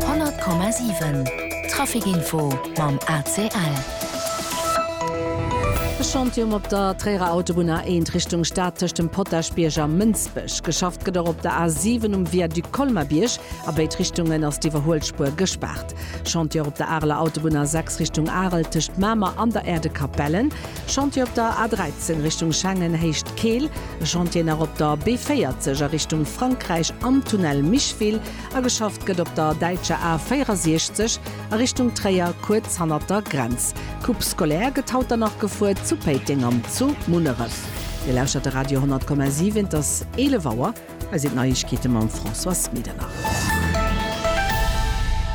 100,7 Traficinfo mam ACL. E Chantium op der Tréierer Autobunn A1 Richtung Stad tëscht dem Potaschbierg a Mënsbech. Geschafft gëtt och op der A7 um Viaduc Colmer-Bierg. A béid Richtungen ass d'Iwwerhuelspuer gespaart. Chantier op der Areler Autobunn A6 Richtung Arel tëscht Mamer an der Aire de Capellen. Chantier op der A13 Richtung Schengen Héicht Keel, e Chantier nach op der B40 a Richtung Frankräich am Tunnel Micheville a geschafft gëtt op der däitscher A 64 a Richtung Tréier kuerz hannert der Grenz. D'Coupe scolaire gëtt haut dann nach gefuer zu Péiteng an zu Munneref. Dir lauschtert de Radio 100,7, et ass 11 Auer. Hei sinn d'Neiegkeete mam Françoise Medernach.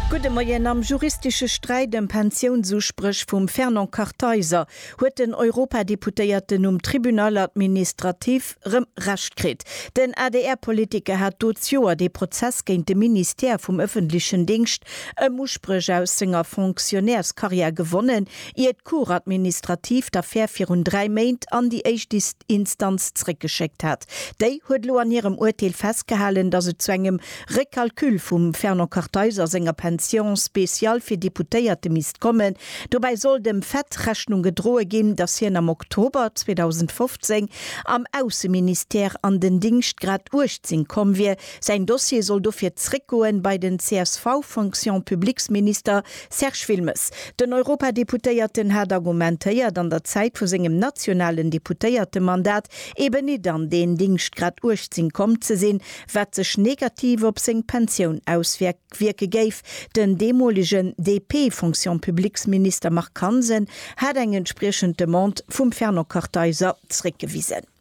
Gudde Moien. Am juristesche Sträit ëm Pensiounsuspréch vum Fernand Kartheiser huet den Europadeputéierten um Tribunal administratif rëm Recht kritt. Den ADR-Politiker hat do d'Joer dee Prozess géint de Ministère vum ëffentlechen Dingscht ëm Uspréch aus senger Fonctionnairscarrière gewonnen, ier Cour administrative d'Affär virun dräi Méint an déi éischt Instanz zréckgeschéckt hat. Déi huet elo an hirem Urteel festgehalen, datt et zu engem Recalcul vum Fernand Kartheiser senger Pension spéciale fir Deputéierte misst kommen. Dobäi soll dem Fait Rechnung gedroe ginn, datt hien am Oktober 2015 am Ausseministère an den Dingschtgrad 18 komm wier. Säin Dossier soll dofir zréckgoen bei den csv-Fonction-publiques-Minister Serge Wilmes, Den Europadeputéierten hat argumentéiert, an der Zäit vu sengem nationalen Deputéiertemandat eben nit an deen Dingschtgrad 18 komm ze sinn, wat sech negativ op seng Pensioun auswierke géif. Den deemolegen DP-Fonction-publiques-Minister Marc Hansen hat eng entspriechend Demande vum Fernand Kartheiser zréckgewisen.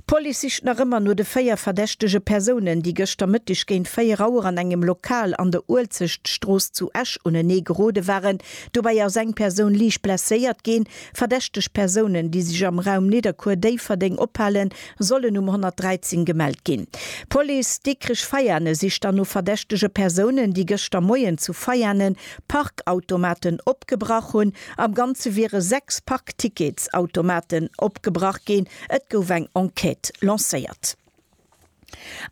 D'Police sicht nach ëmmer no de véier verdächtege Persounen, déi gëschter Mëtteg géint 4 Auer an engem Lokal an der Uelzechtstrooss zu Esch unenee gerode waren. Dobäi ass eng Persoun liicht blesséiert ginn. Verdächteg Persounen, déi sech am Raum Nidderkuer-Déifferdeng ophalen, sollen um 113 gemellt ginn. D'Police Dikrich-Veiane sicht dann no verdächtege Persounen, déi gëschter Moien zu Veiane Parkautomaten opgebrach hunn. Am Ganze wiere sechs Parkticketsautomaten opgebrach ginn. Et gouf eng Enquête lancéiert.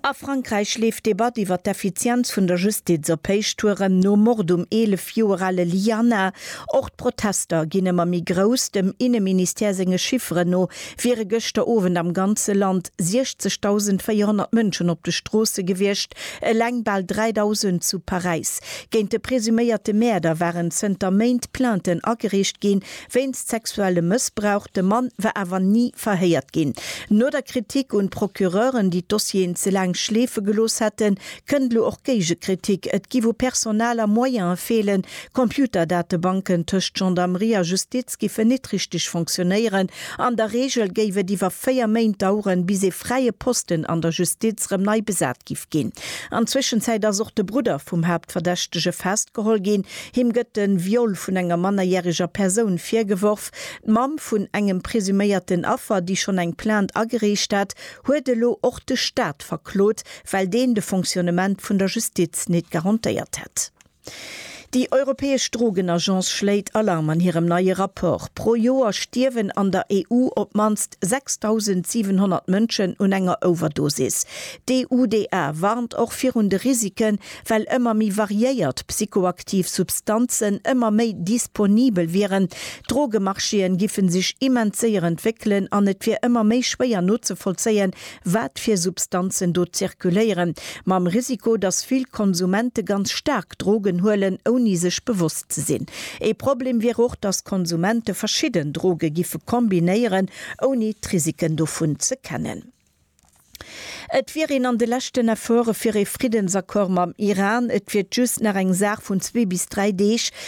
A Frankräich leeft d'Debatt iwwer d'Effizienz vun der Justiz op Héichtouren. Nom Mord um 11 Joer ale Liana. Och d'Protester ginn ëmmer méi grouss. Dem Inneministère senge Chifferen no wiere gëschter Owend am ganze Land 60.400 Mënschen op de Stroosse gewiescht, eleng bal 3.000 zu Paräis. Géint de presuméierte Mäerder waren zënter Méint Plainten ageriicht ginn, wéinst sexuellem Mëssbrauch. De Mann war awer ni verhéiert ginn. No der Kritik un d'Procureuren, déi d'Dossieren ze laang schleefe gelooss hätten, kënnt elo och Géigekritik. Et giff u Personal a Moyene feelen, Computerdatebanken tëscht Gendarmerie a Justiz giffen nit richteg fonctionnéieren, an der Reegel géif et iwwer 4 Méint daueren, bis ee fräie Posten an der Justiz rëm nei besat gi. gestoppt ginn. An Zwëschenzäit ass och de Brudder vum Haaptverdächtege festgeholl ginn. Him gëtt de Viol vun enger mannerjäreger Persoun virgeworf. D'Mamm vun engem presuméierten Affer, déi schonn eng Plainte agereecht hat, huet elo och de Staat verklot, well deen de Fonctionnement vun der Justiz nit garantéiert hätt. Déi europäesch Drogenagence schléit Alarm an hirem neie Rapport. Pro Joer stierwen an der EU op d'mannst 6.700 Mënschen un enger Overdosis. D'EUDA warnt och virun de Risiken, well ëmmer méi variéiert psychoaktiv Substanzen ëmmer méi disponibel wieren. D'Drogemarchéen giffe sech immens séier entwéckelen an et wier ëmmer méi schwéier nozevollzéien, wat fir Substanzen do zirkuléieren, mam Risiko, datt vill Konsumente ganz staark Drogen huelen, ouni sech bewosst ze sinn. Ee Problem wier och, datt Konsumente verschidden Droge giffe kombinéieren, ouni d'Risiken dovun ze kennen. Et wier een an de leschten Efforte fir ee Friddensaccord mam Iran, et wier just nach eng Saach vun zwee bis dräi Deeg,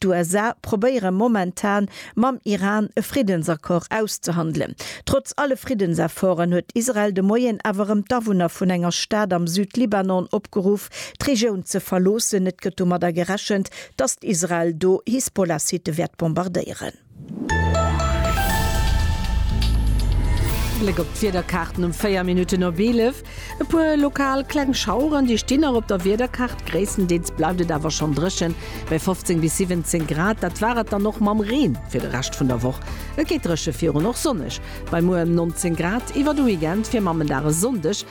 D'USA probéiere momentan mam Iran e Friddensaccord auszehandelen. Trotz alle Friddensefforten huet Israel de Moien awer erëm d'Awunner vun enger Stad am Südlibanon opgeruff, d'Regioun ze verloossen. Et gëtt domadder gerechent, datt Israel do Hisbollah-Sitte wäert bombardéieren. Bléck op d'Wiederkaarten um 4 Minutten op 11. E puer lokal kleng Schaueren, déi stinn nach op der Wiederkaart. Gréisstendeels bleift et awer schonn dréchen, bei 15 bis 17 Grad. Dat war et dann och mam Reen fir de Rescht vun der Woch. Et gétt dréche virun och sonneg, bei muer ëm 19 Grad. Iwwer de Weekend fir Mammendag e Sonndeg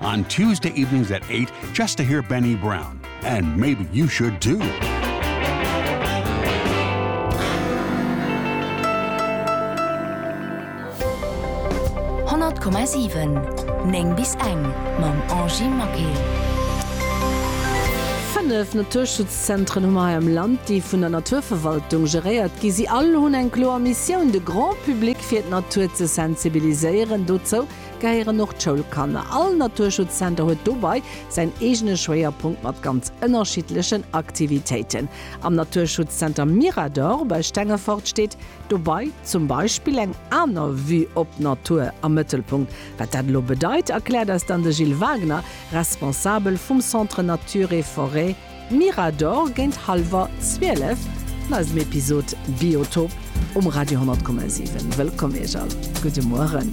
On Tuesday evenings at eight just to hear Benny Brown and maybe you should too. Néng bis eng mam Angie Maquet. Fënnef Naturschutzzentren hu mer hei am Land, déi vun der Naturverwaltung geréiert ginn. Si all hunn eng kloer Missioun, de Grand Public fir d'Natur ze sensibiliséieren. Dozou gehéieren och d'Schoulkanner. All Naturschutzcenter huet dobei säin eegene Schwéierpunkt mat ganz ënnerschiddlechen Aktivitéiten. Am Naturschutzcenter Mirador bei Stengefort steet dobei zum Beispill eng aner Vue op d'Natur am Mëttelpunkt. Wat dat elo bedeit, erkläert eis dann de Gilles Wagner, Responsabel vum Centre Nature et Forêt Mirador géint hallwer 12 an eisem Episod Biotop um Radio 10,7. Wëllkomm Iech all. Gudde Mueren.